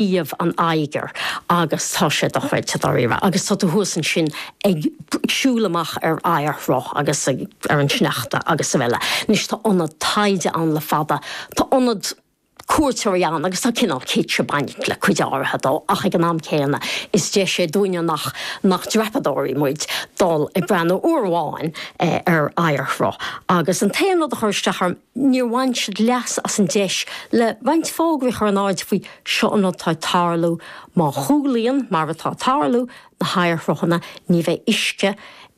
Aois an Oighir agus tá sé dochreidte, dáiríre. Agus tá tú thuas ansin ag siúl amach ar oighearshruth agus ag, ar an sneachta agus araile. Anois, tá ionad taighde ann le fada, tá ionad cuairteoirí ann agus tá cineál kitsch ag baint le cuid áirithe dó ach ag an am céanna is deis í dúinne nach, nach dreapadóirí muid dul ag breathnú uair amháin ar oighearshruth. Agus an t-aon rud a chuir isteach orm, níor bhain siad leas as an deis le roinnt fógraí a chur in airde faoi 'Seo an rud atá ag tarlú, má chúlaíonn, mar atá ag tarlú, na hoighearshruthanna, ní bheidh uisce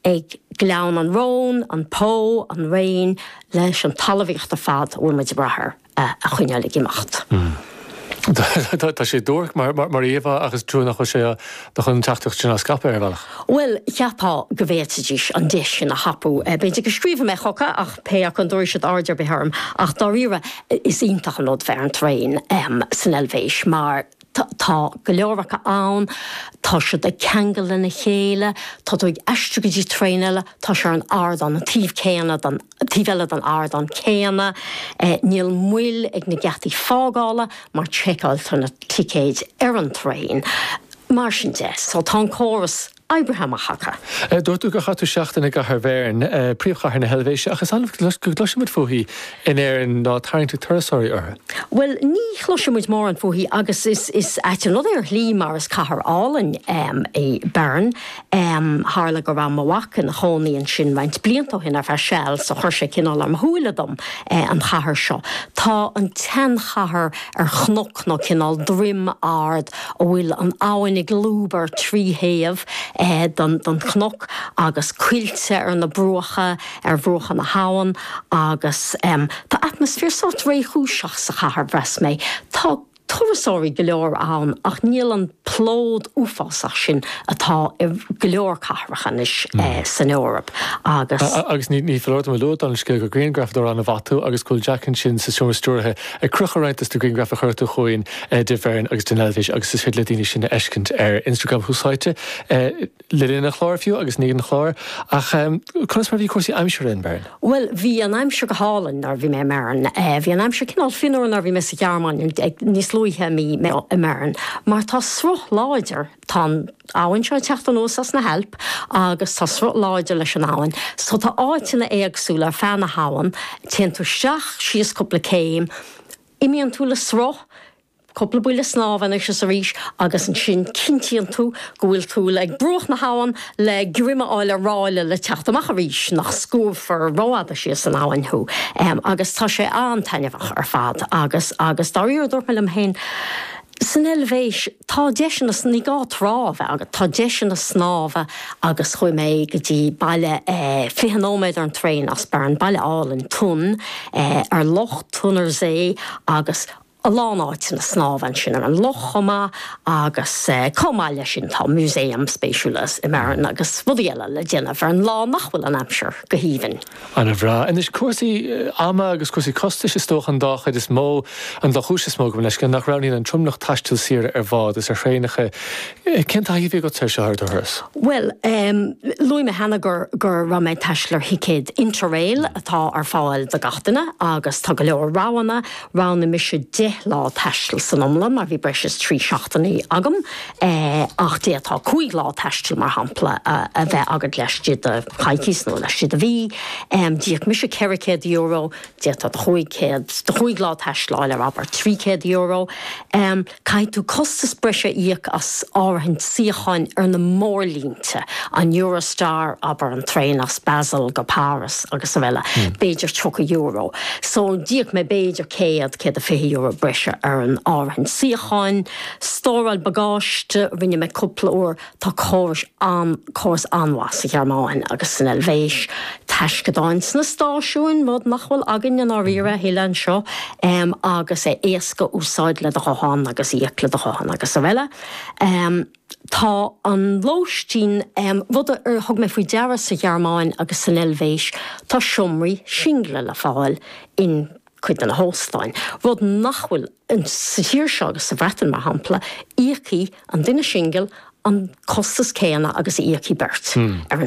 ag Gleann an Rhone, an Po, an Réin, leis an talmhaíocht ar fad a bhfuil muid ag brath air a choinneáil ag imeacht. Tá sé duairc mar íomhá ach is trua nach bhfuil siad chun an teachtaireacht sin a scaipeadh, ar bhealach. Bhuel, cheapfá go bhféadfaidís an deis sin a thapú. B'fhéidir go scríobfaidh mé chucu ach pé acu an dtabharfaidh siad aird ar bith orm. Ach dáiríre, is iontach an rud bheith ar an traein san Eilvéis mar tá go leor acu ann, tá siad ag ceangal lena chéile, tá tú ag aistriú go dtí traein eile, tá sé ar an ardán, an taobh céanna den Taobh eile den ardán céanna, níl moill ag na geataí fágála mar sheiceáiltear na ticéid ar an traein. Mar sin de, tá an córas oibrithe amach acu. Dúirt tú gur chaith tú seachtain i gcathair Bheirn, príomhchathair na hEilvéise, ach is annamh go gcloisimid fúithi in Éirinn ná tarraingt ag turasóirí uirthi. Bhuel, ní chloisimid mórán fúithi agus is ait an rud é ar shlí mar is cathair álainn í Bern. Tharla go raibh mo mhac ina chónaí ansin roinnt blianta ó shin ar feadh seal so chuir sé cineál ar mo shúile dom an chathair seo. Tá an tseanchathair ar chnoc nó cineál droim ard a bhfuil an abhainn ag lúb ar trí thaobh den chnoc agus coillte ar na bruacha, ar bhruacha na habhann agus tá atmaisféar sórt réchúiseach sa chathair, mheas mé. Tá. turasóirí go leor ann ach níl an plód uafásach sin atá i go leor cathracha anois san Eoraip agus. Agus ní foláir dom a lua, don scéal gur grianghrafadóir ana-mhaith tú agus go bhfuil Jack ansin sa seomra stiúrtha ag crochadh roinnt dos na grianghraif a chuir tú chugainn de Bheirn agus den Eilvéis agus is féidir le daoine iad a fheiscint ar Instagram Tús Áite le linn an chláir fiú agus i ndiaidh an chláir. Ach conas mar a bhí cúrsaí aimsire in Bern? Bhuel, bhí an aimsir go hálainn nuair a bhí mé i mBern. Bhí an aimsir cineál fionnuar nuair a bhí mé sa Ghearmáin níos luaithe i mí, mé i mBern mar tá sruth láidir, tá an abhainn seo ag teacht anuas as na hAilp agus tá sruth láidir leis an abhainn so tá áiteanna éagsúla ar feadh na habhann, téann tú isteach, síos cúpla céim, imíonn tú le sruth, Cúpla buille snámha anois is arís agus ansin cinntíonn tú go bhfuil tú ag bruach na habhann le greim a fháil ar ráille le teacht amach arís, nach scuabfar rófhada síos an abhainn thú. Agus tá sé an-taitneamhach ar fad agus, agus dáiríre, dúirt mé liom féin, san Eilvéis tá deiseanna, ní gá trá a bheith agat, tá deiseanna snámha agus chuaigh mé go dtí baile 20 nóiméad ar an traein as Bern, baile álainn, Thun, ar Loch Thunersee agus, a lán áiteanna snámha ansin ar an loch chomh maith agus chomh maith leis sin tá músaeim spéisiúla i mBern agus rudaí eile le déanamh ar an lá nach bhfuil an aimsir go haoibhinn. Ana-bhreá. Anois cúrsaí ama agus cúrsaí costais is dócha an dá chuid is mó, an dá chúis is mó gabh mo leithscéal, nach roghnaíonn an tromlach taisteal saoire ar bhád is ar thraenacha. Cén taithí a bhí agatsa air seo ar do thuras? Bhuel luaigh mé cheana go raibh mé ag taisteal ar thicéad Interrail atá ar fáil do gach duine agus tá go leor roghanna, Roghnaigh mise deich lá taistil san iomlán mar bhí breis is trí seachtainí agam, ach d'fhéadfá cúig lá taistil, mar shampla, a bheith agat laistigh de choicís nó laistigh de mhí. D'íoc mise ceithre chéad euro, d'fhéadfá do chúig lá taistil a fháil ar, abair, trí chéad euro. Caithfidh tú costas breise a íoc as áirithint suíocháin ar na mórlínte, an Eurostar, abair, an traein as Basel go Páras agus araile, b'fhéidir €30. So, d'íoc mé b'fhéidir céad, céad a fiche euro breise ar an áirithint suíocháin. Stóráil bagáiste, rinne mé cúpla uair. Tá córais an, córas an-mhaith sa Ghearmáin agus san Eilvéis, taisceadáin sna stáisiúin, rud nach bhfuil againn i ndáiríre a thuilleadh anseo, agus é éasca úsáid le do ghuthán agus íoc le do ghuthán agus araile. Tá an lóistín, rud a thug mé faoi deara sa Ghearmáin agus san Eilvéis, tá seomraí singile le fáil in, cuid de na hóstáin, rud nach bhfuil sa tír seo agus sa Bhreatain mar shampla, íocfaidh an duine singil an costas céanna agus a íocfaidh beirt ar an.